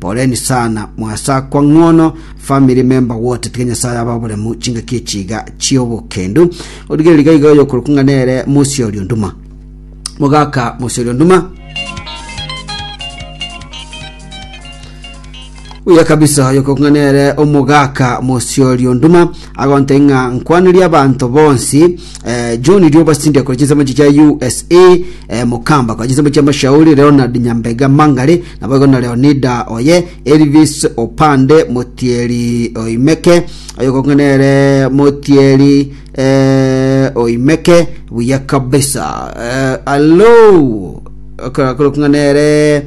Poleni sana, mwasakwa ng'ono family member wote, tiga Nyasaye abe oboremu chingaki echi iga chi'obokendu. Origereria iga iga oyokorokwa ng'a nere Musi oria onduma. Mogaka Musi oria onduma. Buya kabisa oyokorokwa ng'a nere omogaka Musi oria onduma. agontainia ng'a nkwanerie abanto bonsi eh, John Rioba Cindy akora chinsemo echi chia USA eh, Mukamba akora chinsemo chia Mashauri Leonard Nyambega Mangare nabo igo na Leonida oye Elvis Opande Motieri Oimeke oyo kong'ana ere Motieri eh, Oimeke buya kabisa eh, alo akora kong'ana ere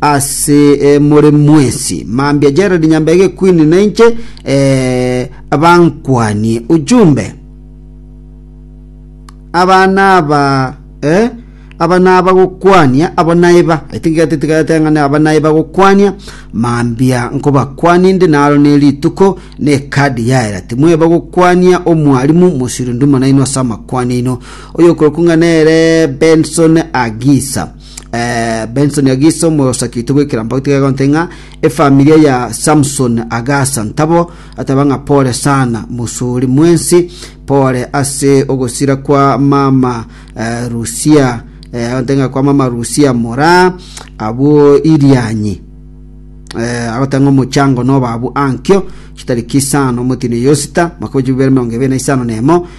ase eh, more mwesi mambia Gerald Nyambege Queen nainche eh, bankwanie ujumbe abana aba eh, aba naba gokwania abo naiba i think gatitigateng'ane aba naiba gokwania mambia nkobakwania inde naro ne rituko ne kadi yaera timweba gokwania omwarimu mosirundu monaino ase amakwania ino oyo okorokung'a nere benson agisa Eh, benson agiso mosakite gwekera mbao tiga gonte ng'a efamilia ya samson agasa ntabo ataba ng'a pole sana musuri mwensi pole ase ogosira kwa mama eh, rusia eh, gonte ng'a kwa mama rusia mora abwo irianyi eh, agotanga omochango nobabu ankio chitariki isano motino yosita mwaka wa chibibere mirongo ibere na isano nemo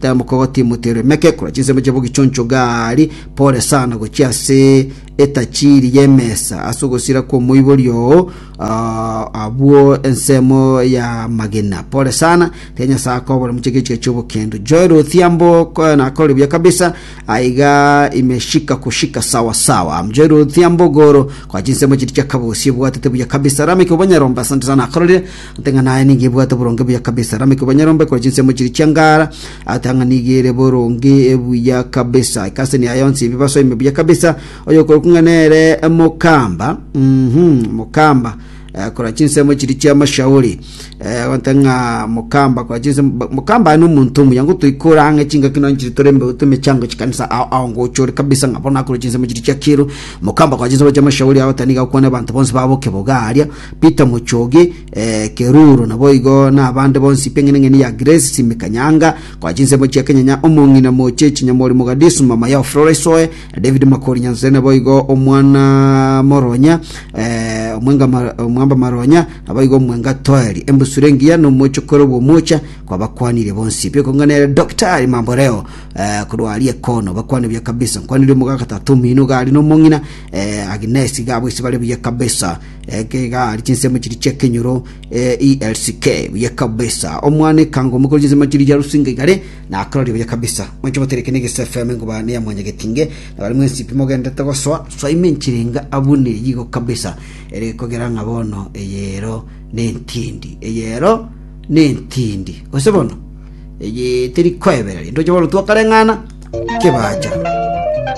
Temboka ogotimutere emekekura chinsemo chiabo gichoncho gari pore sana gochia ase etachiri y'emesa ase ogosira kw'omoibori oo ah, abwo ensemo ya magena pore sana tiga nyasaye akobore moche gechiga chi'obokendo joel othiambo ko- nakore buya kabisa aiga imeshika kushika sawa sawa joel othiambo goro kwa chinsemo chiri chiakabosi ebwatete buya kabisa rameke obanyarombe asante sana akororire Ante ng'a naye nigo ebwate oboronge buya kabisa. Rameki obonyarombe ekore chinsemo chiria chiangara. Ate ng'a nigo ere boronge buya kabisa. Ekaseni yaye yonsi ebibaso ime buya kabisa. Oyo okorokwa ng'a nere mokamba. Mhm, mokamba. Eh, kora chinsemo chiria chiamashauri. Eh, gonte ng'a mokamba kora chinsemo ba- mokamba aye nomonto omuya ngotoikora ang'e chingaki nonye chiri tore mbe tumechango chikanisa ao ao ngochore kabisa ng'a bono akore chinsemo chiria chiakiro. Mokamba kora chinsemo chiamashauri agoteba nigo akwane abanto bonsi babo kebogaria. Peter Mochoge, eh, Keruru, naboigo nabande bonsi p'eng'eneng'eni ya Grace Simikanyanga, koa chinsemo chia Kenyanya, omong'ina moche chinyamori Mogadishu, mama yao Florence Oe, David Makori Nyansere, naboigo omwana Moronya, eh, omwenga Mar- omwamba Maronya, naboigo omwenga Toeri, embusure engiya nomochokoro bw'omocha, kwabakwanire bonsi. Biokong'ana ere Daktari Mamboreo, eh, korwa aria ekono, bakwane buya kabisa. Nkwanire omogaka Tatu Omino iga aria nomong'ina, eh, Agnes iga abo ase bare buya kabisa. Ekegari chinsemo chiri chi'ekenyoro eh, ELCK buya kabisa. Omwana ekango omokoro chinsemo chiri chia rusinga igare na akarori buya kabisa. Mwancho botereke negese FM ngoba ne ya mwanya getinge na bari mwensipi mogendete gosoa soa ime nchirenga abune yigo kabisa. Ere kogera ng'a bono eyero nentindi. Eyero nentindi. Gose bono eye teri koebereria. Ndoche bono twakareng'ana kebacha.